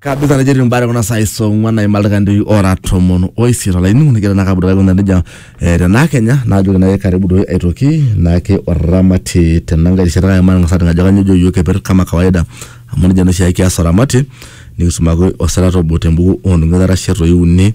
kabisa atejo etii mbare kuna saai saa ong'uan naima ildaikani ora tomon oisiet olainining'oni nigira naa kabudore aikunaa nejia eh, tenaa kenya naajoki naake karibu doi aitoki naake oramati tenankae rishata kake matang'as aning ajo kanyoo ejo iyiok keper kama kawaida amu nejia naa oshiake kias oramati nikisumaki osirata obo tembuku onung'ui itarashe toi uni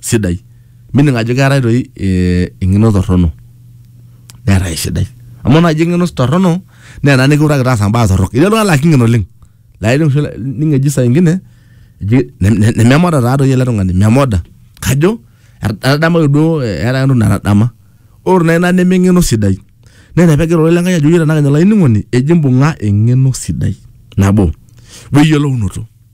sidai meaning ajo keetae toi eh, eng'eno torrono neetae esidai amu naaji eng'eno torrono naa ena nikiutaki taasa mbaa torrok etii oltung'ani laa kingen oleng laa ining oshi ining eji saa ingine eji ne- ne- nememoda taatoi ele tung'ani memoda kajo etadamaki duo eh, eeta ake entoki natadama ore naa ina neme eng'eno sidai naa ina pegira ororei lenkai ajoki tenakenya olainining'oni eji imbung'a eng'eno sidai nabo weyiolounoto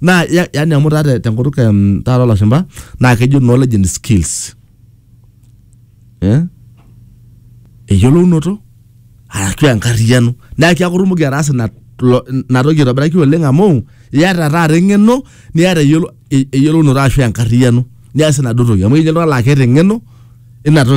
naa ya- yaani amu taa te- tenkutuk em, taata olashumba naa kejo knowledge and skills eh? eyiolounoto arashu enkarriyiano naa keeku itumoki ataasa ina lo- ina toki aitobiraki oleng amu iyata taata eng'eno niata eyiolo- e- eyiolounoto arashu enkarriyiano nias enaduo toki amu etii oltung'ani laa keeta eng'eno ina toki